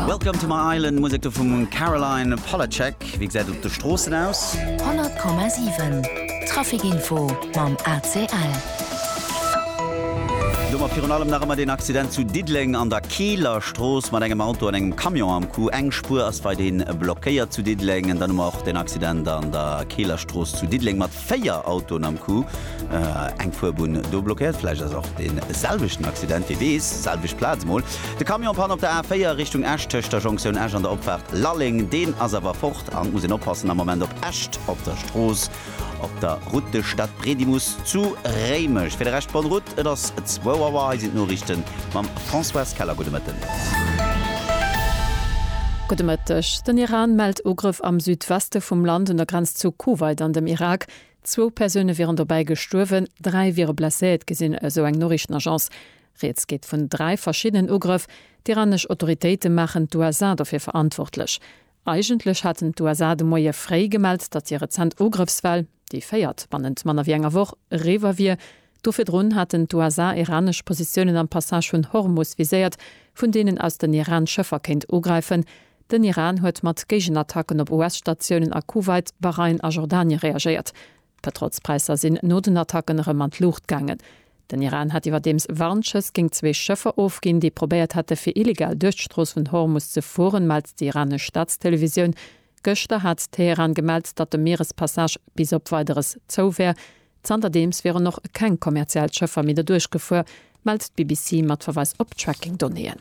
Welcome to my island Musek do vum Caroline Polacek. Wéi gesäit et op de Stroossen aus? 100,7 Trafikinfo mam ACL. Domat virun allem nach ëmmer deen Accident zu Diddeleng an der Kieler Strooss mat engem Auto an engem Camion am Coup. Eng Spuer ass weiderhin blockéiert zu Diddeleng. Dann hu mer och den Accident an der Kieler Strooss zu Diddeleng mat 4 Autoen am Coup, eng Fuerbunn do blockéiert. Vläicht ass och dee selwechten Accident, wie weess. Selwecht Plaz mol. De Camion Panne op der A4 Richtung Esch tëscht der Jonktioun Esch an der Opfaart Lalleng. Deen ass awer fort an et muss een oppassen am Moment op Esch op der Strooss op der Route de Stadbredimus zu Réimech. Fir de Rescht, bonne route, et ass 2 Auer. Hei sinn d'Noriichte mam. Françoise Keller, Gudde Mëtten. Gudde Mëtteg. Den Iran mellt Ugrëff am Südweste vum Land un der Grenz zu Kuwait an dem Irak. Zwou Persoune wieren dobäi gestuerwen, dräi wiere blesséiert gi sinn, esou eng Noriichtenagence. Rieds geet vun dräi verschiddenen Ugrëff. D'iranesch Autoritéite maachen d'USA dofir verantwortlech. Eigentlech haten d'USA de Moie fréi gemellt, datt hir rezent Ugrëffswell, déi véiert bannent manner wéi enger Woch, eriwwer wier. Do virdrun haten d'USA iranesch Positiounen am Passage vun Hormus viséiert, vun deenen aus den Iran Schëffer kéint ugräifen. Den Iran huet mat Géigenattacken op US-Statiounen a Kuwait, Bahrain a Jordanie reagéiert. D'Petrolspräisser sinn no den Attacken erëm an d'Luucht gaangen. Den Iran hat iwwerdeems Warnschëss géint zwee Schëffer ofginn, déi probéiert hätte fir illegal duerch d'Strooss vun Hormus ze fueren, mellt déi iranesch Staatstelevisioun. Gëschter hat Teheran gemellt, datt de Mierespassage bis op Weideres zou wär. Zanterdeems wieren och keng kommerziell Schëffer méi derduerch gefuer, mellt d'BBC mat Verweis op Tracking-Donnéeën.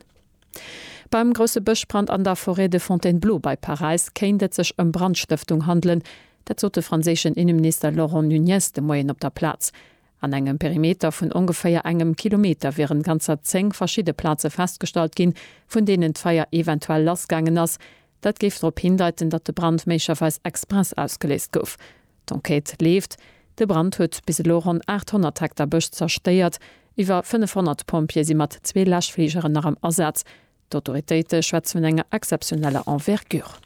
Beim grousse Bëschbrand an der Forêt de Fontainebleau bei Paräis kéint et sech ëm Brandstëftung handelen. Dat sot de franséischen Inneminister Laurent Nunez de Moien op der Plaz. An engem Perimeter vun ongeféier engem Kilometer wieren ganzer 10 verschidde Plaze festgestallt ginn, vun deenen d'Feier eventuell lassgaangen ass, Dat géif drop hindeiten, datt de Brand méiglecherweis express ausgeléist gouf. D'Enquête leeft. De Brand huet bis elo ronn 800 Hektar Bësch zerstéiert. Iwwer 500 Pompjeeë si mat zwee Läschfligeren nach am Asaz. D'Autoritéite schwätze vun enger exzeptioneller Envergure.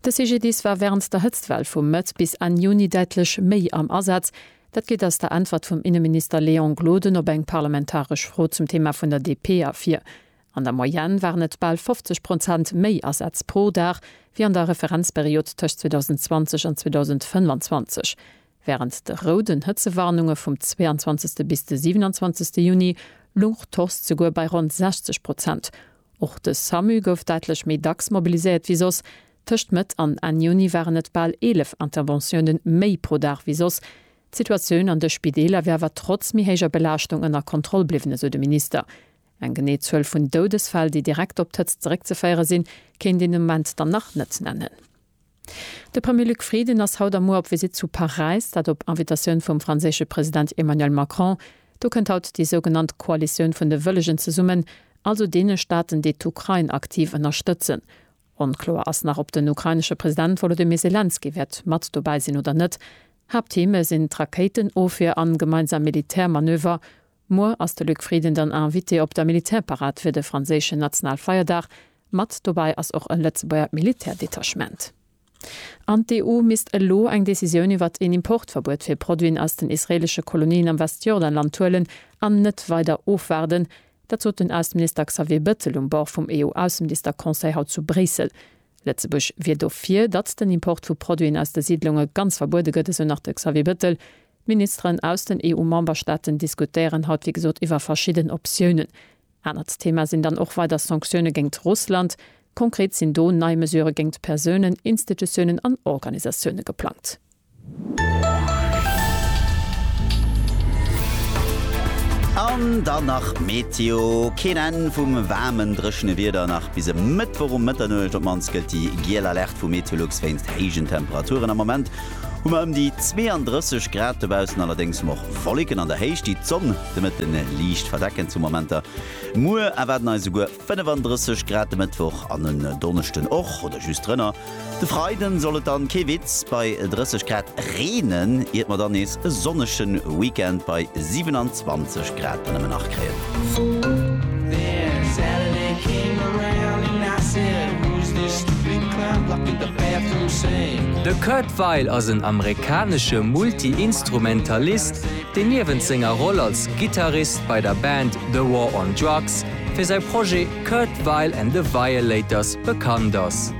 De CGDIS war wärend der Hëtztwell vu Mëtt bis Enn Juni däitlech méi am Asaz. Dat geet aus der Äntwert vum Inneminister Léon Gloden op eng parlamentaresch Fro zum Thema vun der DP ervir. An der Moyenne waren et bal 50 Prozent méi Asätz pro Dag wéi an der Referenzperiod tëscht 2020 an 2025. Wärend de rouden Hëtzewarnunge vum 22. bis de 27. Juni louch d'Force souguer bei ronn 60 Prozent. Och de Samu gouf däitlech méi dacks mobiliséiert wéi soss. Tëscht Mëtt an Enn Juni waren et bal 11 Interventioune méi pro Dag wéi soss. D'Situatioun an de Spideeler wier awer trotz méi héijer Belaaschtung ënner Kontroll bliwwen, esou de Minister. Eng genee Zuel vun Doudesfäll, déi direkt op d'Hëtzt zeréckzeféiere sinn, kéint een de Moment dann nach net nennen. De Premier Luc Frieden ass haut a muer op Visitt zu Paräis, dat op Invitatioun vum franséische President Emmanuel Macron. Do kënnt haut déi sougenannt Koalitioun vun de Wëllegen zesummen, also deene Staaten, déi d'Ukrain aktiv ënnerstëtzen. Onkloer ass nach, ob den ukrainesche President Wolodymyr Selenskyj wäert mat dobäi sinn oder net. Haapttheme sinn d'Rakéitenofwier an gemeinsam Militärmanöver. Muer ass de Luc Frieden dann Invité op der Militärparad fir de franséischen Nationalfeierdag. Mat dobäi ass och e Lëtzebuerger Militärdetachement. An d'EU misst elo eng Decisioun iwwert een Importverbuet fir Produiten aus den israeelesche Kolonien am Westjordanland huelen an net weider ofwaarden. Dat sot den Ausseminister Xavier Bettel um Bord vum EU-Ausseminister-Conseil haut zu Bréissel. Lëtzebuerg wier dofir, datt den Import vu Produiten aus de Siidlunge ganz verbuede gëtt, esou nach de Xavier Bettel. D'Ministeren aus den EU-Memberstaaten diskutéieren haut wéi gesot iwwer verschidden Optiounen. Anert Thema sinn dann och weider Sanktioune géingt Russland. Konkret sinn do nei Mesure géingt Persounen, Institutiounen an Organisatioune geplangt. An dann nach d'Meteo, Keen Enn vum waarmen, dréchene Wieder nach bis e Mëttwoch um Mëtternuecht. Op mannst gëllt déi giel Alerte vu Meteolux wéinst héijen Temperaturen. Am Moment hu mer ëm déi 32 Grad dobaussen, allerdéngs och Wollécken an der Héicht, déi d'Sonn de Mëtte liicht verdecken zu Momenter. Muer erwaarden eis esouguer 35 Grad de Mëttwoch an en Donneschden och oder just drënner. De Freiden soll et dann, kee Witz, bei 30 Grad reenen, iert mer dann nees e sonnegen Weekend bei 27. Grad nëmmen nach kréien. De Kurt Weill ass en amerikanesche Multi-Instrumentalist, deen niewent senger Roll als Gittarist bei der Band The War on Drugs fir säi Projet Kurt Weill and the Violators bekannt ass.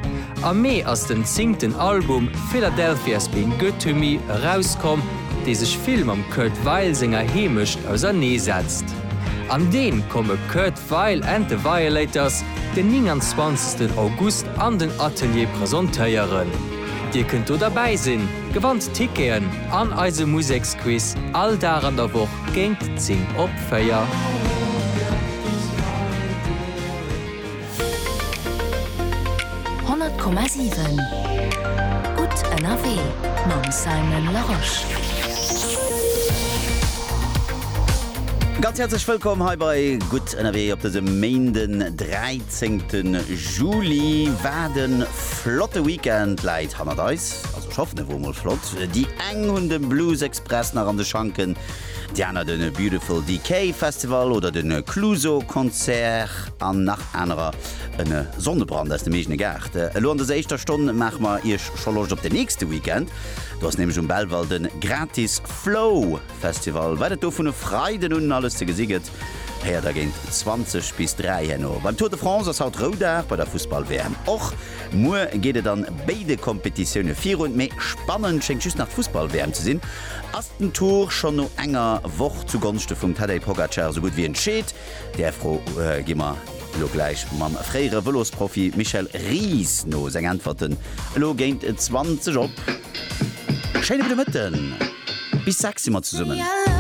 Am Mee ass den zéngten Album Philadelphia's Been Good to Me erauskomm, dee sech vill mam Kurt Weill senger Heemecht ausernee setzt. An deem komme Kurt Weill and the Violators den 29 August an den Atelier presentéieren. Dir kënnt do derbäi sinn, gewannt Ticketen an eise Museksquiz all Dag an der Woch géint 10 op 4. 100,7 gutt ënnerwee mam Simon Larosche. Ganz häerzlech wëllkomm hei bei Gutt ënnerwee op dësem Méinden 13 Juli. Wat e flotte Weekend läit hannert eis, also ech hoffen e wor mol flott. Déi eng hunn de Blues Express nach an de Schanken, déi aner de Beautiful Decay Festival oder de Clueso Concert. An nach anerer. En Sonnebrand aus dem eegene Gaart. Elo an dëser éischter Stonn maache mer Iech scho Loscht op den nächste Weekend. Do ass nämlech um Belval de Gratis Flow Festival. Wat et do vun e Freiden un alles ze gesi gëtt, héiert der géint 20 bis 3 herno. Beim Tour de France ass haut Roudag, bei der Fussball-WM och. Muer geet et an béide Kompetitioune virun. Mee spannend schéngt just nach d'Fussball-WM ze sinn. Ass den Tour schonn no enger Woch zu Gonschte vum Tadej Pogacar esou gutt wéi entscheet? Där Fro gi mer elo gläich mam fréiere Vëlosprofi Michel Ries no. Seng Äntwerten elo géint 20 op. Schéine gudde Mëtten! Bis 6 si mer zesummen.